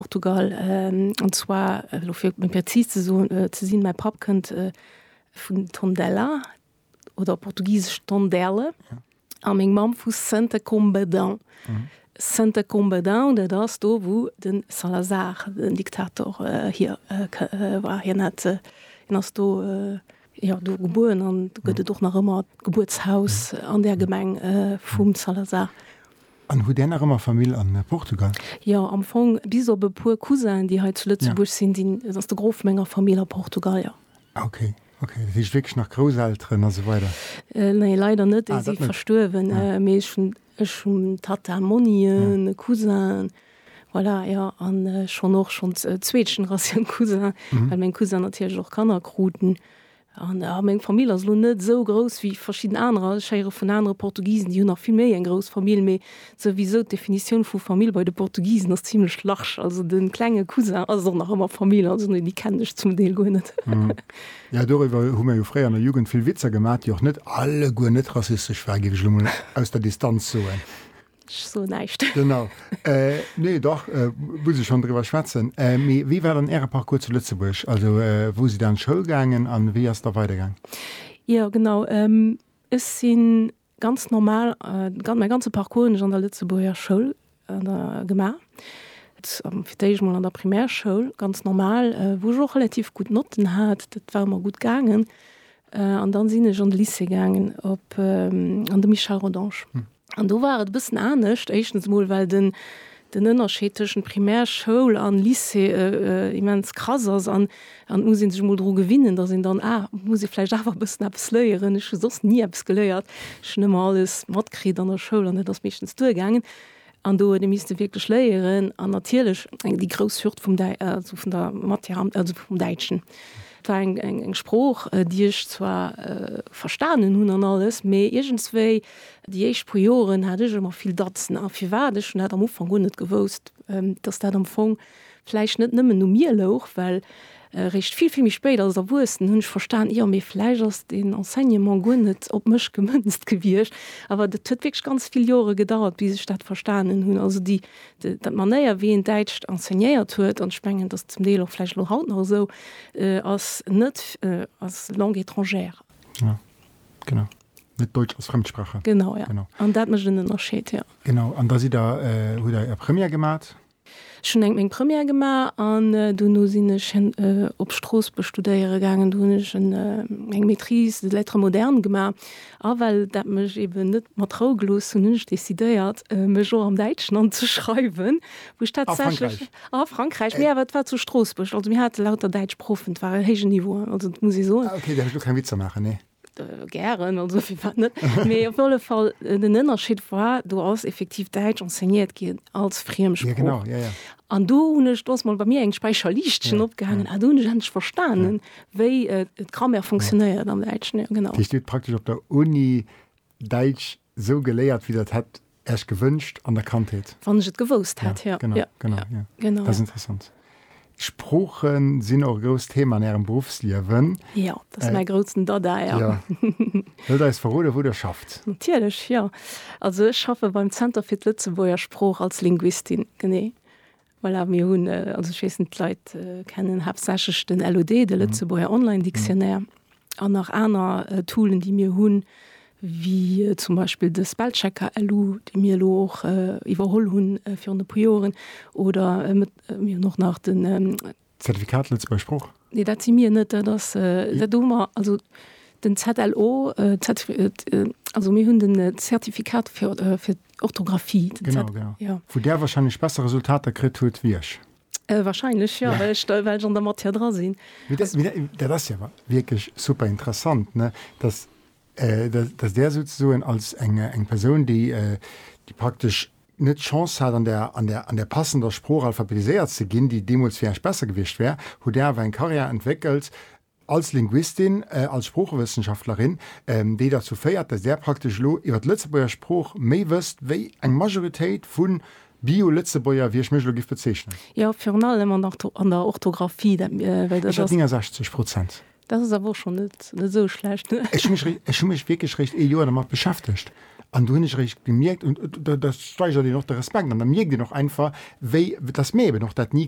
Portugal, an zwar elo fir méi präzis ze soen, ze sinn, mäi Papp kënnt vun Tondela oder op Portugisesch Tonderle a meng Mamm vu Santa Combadão. Santa Combadão, dat ass do, wou de Salazar den Diktator hier war. Hien hat, hien ass do, jo, do gebuer an do gëtt et och nach ëmmer d'Gebuertshaus an där Gemeng vum Salazar. An hutt Där nach ëmmer Famill a Portugal? Jo, am Fong bis op e puer Cousinen, déi hei zu Lëtzebuerg sinn, sinn, ass de Gros vu menger Famill a Portugal, jo. Ah ok, ok. Dat heescht wierklech nach Grousselteren a sou weider? Nee, leider net, déi si verstuerwen. Mee ech hunn, ech hunn Tata, Monnien, e Cousin, voilà, jo. An schonn och schonns zweet Generatioun Cousin, well meng Cousinen natierlech och Kanner kruten. A meng Famill ass elo net esou grouss wéi verschidden anerer. Ech héiere vun anere Portugisen, déi hunn nach vill méi eng grouss Famill. Mee souwisou, d'Definitioun vu Famill bei de Portugisen ass zimlech large. Also de klenge Cousin ass och nach ëmmer Famill. Also nee, déi kennen ech zum Deel guer net. Jo, doriwwer hu mir jo fréier an der Jugend vill Witzer gemaach, déi och net alleguer net rassistesch waren, géif ech elo mol aus der Distanz soen. Ech soen näischt. Genau. Nee, dach, muss ech schonn driwwer schwätzen. Mee wéi war dann Äre Parcours zu Lëtzebuerg? Also wou sidd Dir an d'Schoul gaangen a wéi ass da weidergaang? Jo, genau. Ech si ganz normal, mäi ganze Parcours hunn ech an der Lëtzebuerger Schoul gemaach. Fir d'éischt emol an der Primärschoul, ganz normal, wou ech och relativ gutt Notten hat, dat war ëmmer gutt gaangen. An dann sinn ech an de Lycée gaangen, op an de Michel Rodange. An do war et e bëssen anescht. Éischtens emol, well den, den Ënnerscheed tëschent Primärschoul an Lycée immens krass ass. An, an et muss ee sech emol dru gewinnen, datt een dann, ah, muss ee vläicht awer e bëssen eppes léieren. Ech hu soss ni eppes geléiert. Ech hunn ëmmer alles matkritt an der Schoul an et ass meeschtens duergaangen. An do huet ee misste wierklech léieren. An natierlech eng, déi grouss Hürd vum Däi, also vun der Matière am, also vum Däitschen. Et war eng, eng, eng Sprooch, déi ech zwar verstanen hunn an alles, mee iergendswéi, Déi éischt puer Joren hat ech ëmmer vill Datzen. A firwat? Ech hunn dat am Ufank guer net gewousst, dass dat am Fong vläicht net nëmmen u mir louch, well eréischt vill, vill méi spéit als Erwuessen hunn ech verstan, jo, mee vläicht ass den Enseignement guer net op mech gemënzt gewiescht. Awer dat huet wierklech ganz vill Jore gedauert, bis ech dat verstanen hunn. Also déi, d'Manéier, wéi een Däitscht enseignéiert huet, an ech mengen, dass zum Deel och vläicht elo haut nach esou ass, net als Langue étrangère. Genau. Net Deutsch als Fremdsprache. Genau, ja. Genau. An dat mécht en Ënnerscheed, ja. Genau. An da sidd Der, hutt Der Är Première gemat? Ech hunn eng meng Première gemaach an dono sinn ech op Stroossbuerg studéiere gaangen. Do hunn ech en eng Maîtrise de lettres modernes gemaach. A well dat mech eeben net mat Rou gelooss hunn, hunn ech decidéiert, mech och am Däitschen anzeschreiwen, wou ech tatsächlech. A Frankräich? A Frankräich, mee awer et war zu Stroossbuerg. Also mir hate lauter däitsch Proffen, et war e héijen Niveau, also dat muss ee soen. Ah, okay, da huet ech elo keng Witzer maachen, nee. Gären, also firwat net? Mee op alle Fall, den Ënnerscheed war, do ass effektiv Däitsch enseignéiert ginn als Friemsprooch. Ja, genau, ja, ja. An do hunn ech, do ass mol bei mir eng Späicherliichtchen opgaangen, ah do hunn ech endlech verstanen, wéi d'Grammaire fonctionnéiert am Däitschen, ja, genau. Dat heescht, Dir hutt praktesch op der Uni Däitsch Sou geléiert wéi der et hätt Äech gewënscht an der Kandheet? Wann ech et gewousst hätt, jo. Ja, genau, ja. Genau, ja. Dat ass interessant. D'Sprooche sinn och e grousst Thema an Ärem Beruffsliewen. Jo, dat ass mäi groutsen Dada, ja. Jo. Wëllt Der eis verroden, wou Der schafft? Natierlech, jo. Also ech schaffe beim Zenter fir d'Lëtzebuerger Sprooch als Linguistin, genee. Voilà, mir hunn, also ech weess net, d'Leit kennen haaptsächlech den LOD, de Lëtzebuerger Online Dictionnaire, an nach aner Toolen, déi mir hunn, wéi zum Beispill de Spellchecker LU, dee mir elo och iwwerholl hunn virun e puer Joren, oder mir hunn och nach den Zertifikat Lëtzebuerger Sprooch? Nee, dat si mir net. Dat ass, dat hu mer, also den ZLO, also mir hunn de Zertifikat fir fir d'Orthografie. Genau, genau. Jo. Wou Där wahrscheinlech besser Resultater kritt hutt wéi ech. Wahrscheinlech jo, well ech da, well ech an der Matière dra sinn. Mee dat, mee dat, dat ass jo awer wierklech super interessant, ne, dass, dass Där souzesoen als eng, eng Persoun, déi, déi praktesch net d'Chance hat, an der, an der, an der passender Sprooch alphabetiséiert ze ginn, déi deemools fir Iech besser gewiescht wär, hutt Dir awer eng Karriär entwéckelt als Linguistin, als Sproochewëssenschaftlerin, déi derzou féiert, dass Där praktesch elo iwwer d'Lëtzebuerger Sprooch méi wësst wéi eng Majoritéit vu Bio-Lëtzebuerger, wéi ech mech elo giff bezeichnen. Jo, virun allem an der Orthographie. Dat, well dat ass. Iwwer 69 Prozent. Daat ass awer och schon net esou schlecht. Ech hun mech wierklech réischt ee Joer dermat beschäftegt an do hun ech réischt gemierkt, an do steigert een och de Respekt an da mierkt een och einfach wéi, datt mir eben och daat ni.